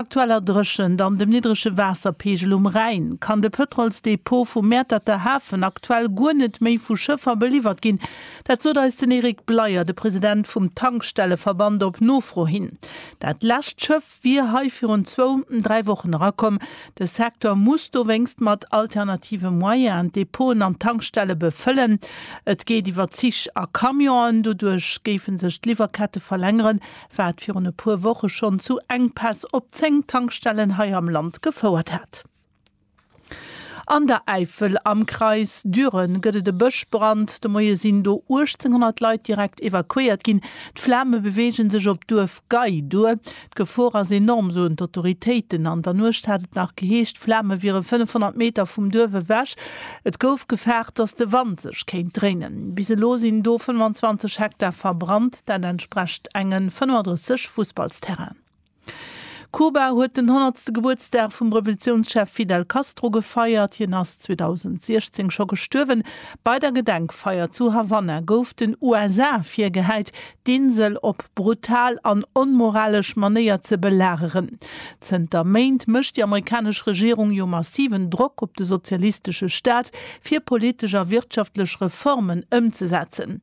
aktueller Dréchent an dem niddrege Waasserpeegel um Rhäin, kann de Pëtrolsdepot vum Mäerterter Hafen aktuell guer net méi vu Schëffer beliwwert ginn. Dat sot eis den Eric Bleyer, de President vum Tankstelleverband, op Nofro hin. Dat lescht Schëff wier hei virun zwou, dräi Wochen erakomm. De Secteur muss dowéinst mat alternative Moyenen d'Depoten an d'Tankstelle befëllen. Et geet iwwer Zich a Camionen. Doduerch géife sech d'Liwwerkette verlängeren, Wat virun e puer Woche schonn zu Enkpäss op 10 Tankstellen hei am Land gefouert hat. An der Äifel am Kreis Düren gëtt et e Bëschbrand. De Moie sinn do 1.800 Leit direkt evakuéiert ginn. D'Flame beweege sech op d'Duerf Gei duer. D'Gefor ass enorm, soen d'Autoritéiten. An der Nuecht hat et nach geheescht, d'Flame wiere 500 Meter vum Duerf ewech. Et gouf gefaart, datt de Wand sech kéint dréinen. Bis elo sinn do 25 Hektar verbrannt. Dat entsprecht engen 35 Fussballsterrainen. Kuba huet den honnertste Gebuertsdag vum Revolutiounschef Fidel Castro gefeiert. Hien ass 2016 scho gestuerwen. Bei der Gedenkfeier zu Havanna gouf den USA virgehäit, d'Insel op brutal an onmoralesch Manéier ze belageren. Zënter Méint mécht déi amerikanesch Regierung jo massiven Drock op de sozialistesche Staat, fir politesch a wirtschaftlech Reformen ëmzesetzen.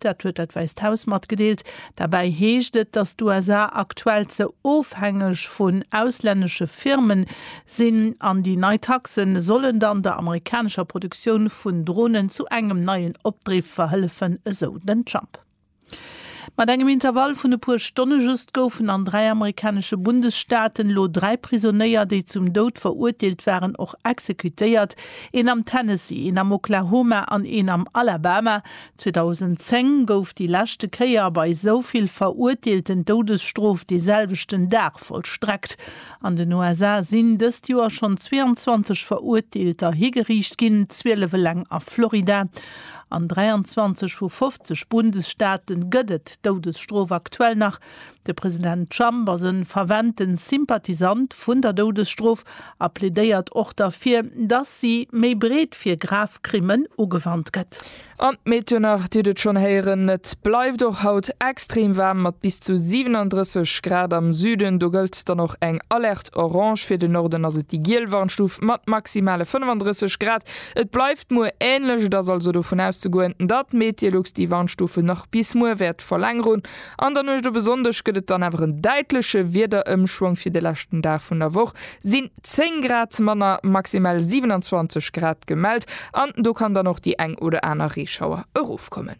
Dat huet dat Wäisst Haus matgedeelt. Derbäi heescht et, datt d'USA aktuell ze ofhängeg vun auslännesche Firmen sinn an déi nei Taxen sollen dann der amerikanescher Produktioun vun Dronen zu engem neien Opdriff verhëllefen, esou den Trump. Mat engem Intervall vun e puer Stonne just goufen an dräi amerikanesche Bundesstaaten elo dräi Prisonéier, déi zum Doud verurteelt waren, och exekutéiert, een am Tennessee, een am Oklahoma an een am Alabama, 2010 gouf déi leschte Kéier bei esou vill Verurteelten d'Doudesstrof dee selwechten Dag vollstreckt. An den USA sinn dëst Joer schonn 22 Verurteelter higeriicht ginn, 12 eleng a Florida. An 23 vu 50 Bundesstaate gëtt et d'Doudesstrof aktuell nach. De President Trump ass en fervente Sympathisant vun der Doudesstrof a plädéiert och derfir, dass si méi breet fir grav Krimmen ugewannt gëtt. An d'Méternach, Dir hutt et schonn héieren, et bleift och haut extrem waarm mat bis zu 37 Grad am Süden. Do gëllt dann och eng Alerte orange, fir den Norden ass et déi giel Warnstuf mat maximale 35 Grad. Et bleift muer änlech, et ass also dovun auszegoen, datt Meteolux déi Warnstufe nach bis muer wäert verlängerun. An der Nuecht op e Sonndeg gëtt et dann awer en däitleche Wiederëmschwong. Fir de leschten Dag vun der Woch sinn 10 Grad manner, maximal 27 Grad gemellt an do kann dann och déi eng oder aner Reeschauer erofkommen.